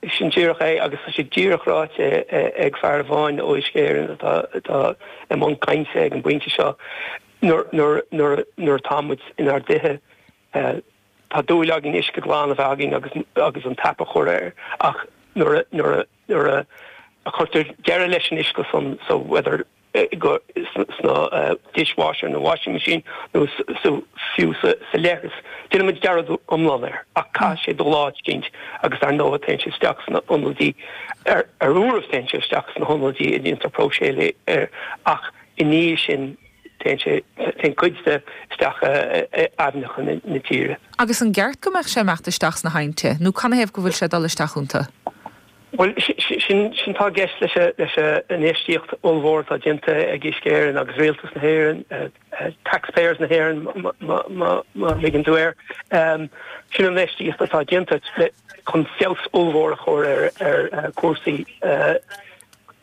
É sin díreach é, agus tá sé díreach ráite ag fear amháin ó Uisce Éireann atá i mbun cainte ag an bpointe seo, nuair atá muid inár dtithe, tá dúil againn uisce glan a bheith againn agus an tap a chur air, ach nuair a chuirtear deireadh leis an uisce san, so whether. sna dishwasher, nó washing machine, nó fiú sa leithreas. Déanann muid dearmad iomlán air, ach caithfidh sé dul áit éicint, agus ar ndóigh téann sé isteach sna hionadaí, ar ndóigh téann sé isteach sna hionadaí ina ndéantar próiseáil air, ach i ndiaidh sin téann sé, téann cuid de, isteach in aibhneacha na tíre. Agus an gceart go mbeadh sé ag imeacht isteach sna haibhnte, nó canathaobh go bhfuil sé ag dul isteach iontu? Bhuel, sin atá i gceist leis an infheistíocht ollmhór atá déanta ag Uisce Éireann agus Rialtas na hÉireann, taxpayers na hÉireann más mian leat a rá air. Sin an infheistíocht atá déanta chun feabhas ollmhór a chur ar chúrsaí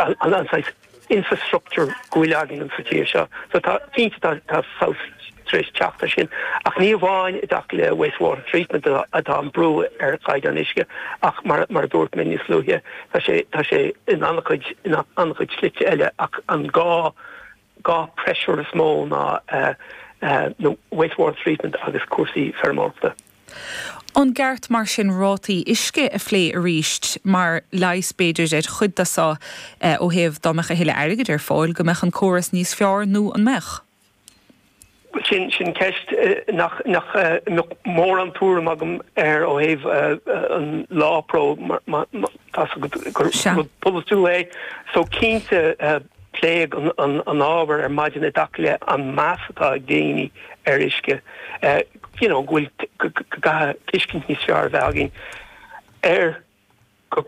an saghas, infrastructure go bhfuil againn sa tír seo. So tá, cinnte tá, tá feabhas tar éis teacht ar sin ach ní amháin i dtaca le waste water treatment atá an brú ar chaighdeán uisce ach mar, mar a dúirt mé níos luaithe, tá sé, tá sé in an-chuid, in an-chuid slite eile ach an dá, dá pressure is mó ná eh, eh, na waste water treatment agus cúrsaí feirmeoireachta. An gceart mar sin rátaí uisce a phlé arís mar leigheas b'fhéidir ar chuid de so ó thaobh dá mbeadh a thuilleadh airgid ar fáil, go mbeadh an córas níos fearr nó an mbeadh? Sin sin ceist nach nach mbeadh mórán tuairim agam air ó thaobh an LAWPRO mar mar mar tá sé ina rud polaitiúil é so cinnte Pléadh an t-ábhar ar maidin i dtaca le an meas atá ag daoine ar uisce, you know, go bhfuil, go gcaithfidh tuiscint níos fearr a bheith againn ar go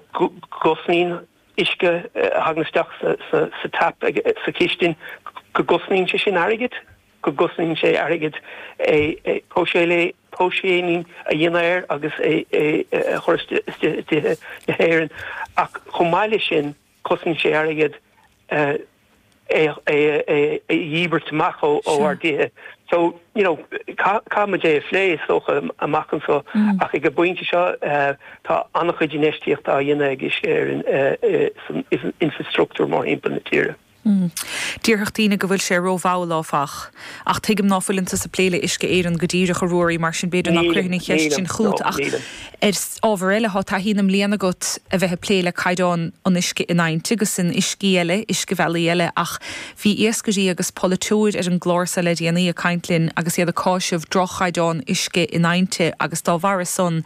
gcosnaíonn uisce a thagann isteach sa tap sa chistin, go gcosnaíonn sé sin airgead, go gcosnaíonn sé airgead é a phróiseáil, próiseáil a dhéanamh air agus é a chur isteach i dtithe na hÉireann ach chomh maith leis sin, Cosnaíonn sé airgead é a dhíbirt amach ó ár dtithe so, you know, caithfidh muid é a phlé, is dócha, amach anseo ach ag an bpointe seo tá an-chuid infheistíochta á dhéanamh ag Uisce ar an infreastruchtúr mórthimpeall na tíre. Déarfadh daoine go bhfuil sé rómhall, áfach. Ach tuigim ná fuileann tusa ag plé le Uisce Éireann go díreach, a Ruairí, mar sin b'fhéidir ná cuirfinn an cheist sin chugat ach Ar ábhar eile, tá taithí na mblian agat a bheith ag plé le caighdeán an uisce in aibhnte agus in uiscí eile, uiscebhealaí eile, ach bhí iascairí agus polaiteoirí ar an gclár seo le déanaí ag caint linn agus iad ag cáiseamh droch-chaighdeán uisce in aibhnte agus dá bharra san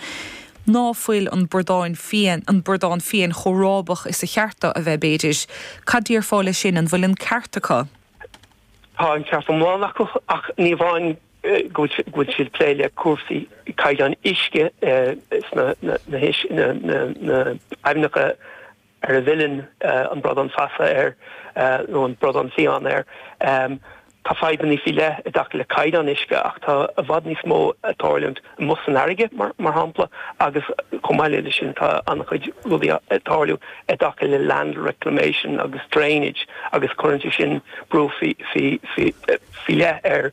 ná fuil an bradán fiain, an bradán fiain chomh rábach is a cheart do a bheith, b'fhéidir. Cad déarfá le sin? An bhfuil an ceart acu? Tá an ceart iomlán acu, ach ní amháin go bhfuil siad ag plé le cúrsaí caighdeán uisce sna haibhneacha ar a bhfilleann an bradán feasa ar nó an bradán fiáin ar. Tá fadhbanna faoi leith i dtaca le caighdeán uisce ach tá i bhfad níos mó ag tarlúint amuigh san fharraige, mar shampla, agus chomh maith leis sin tá an-chuid rudaí ag tarlú i dtaca le land reclamation agus drainage agus cuireann sé sin brú faoi leith ar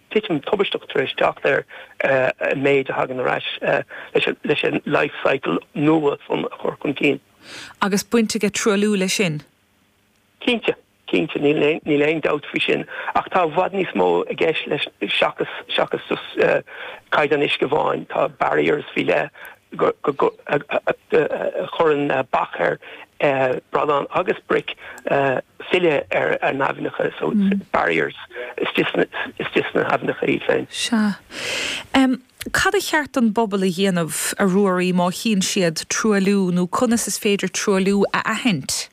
titim tubaisteach tar éis teacht ar an méid a thagann ar ais leis an life cycle nua san a chur chun cinn. Agus baint aige truailliú leis sin? Cinnte, cinnte, níl aon dabht faoi sin, ach tá i bhfad níos mó i gceist leis seachas seachas just caighdeán uisce amháin, tá barriers faoi leith a chuireann bac ar bradán agus bric. filleadh ar na haibhneacha, so barriers, istigh sna haibhneacha iad féin. Sea. Cad a cheart don bpobal a dhéanamh, a Ruairí, má chíonn siad truailliú nó conas is féidir truailliú a aithint?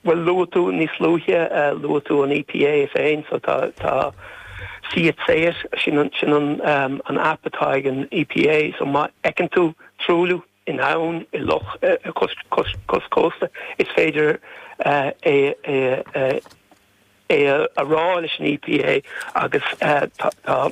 Bhuel, luaigh tú níos luaithe, luaigh tú an EPA féin, so tá See it, say it, sin an app atá ag an EPA, so má fheiceann tú truailliú, in abhainn, i loch, cois cósta. Is féidir é a rá leis an EPA agus tá.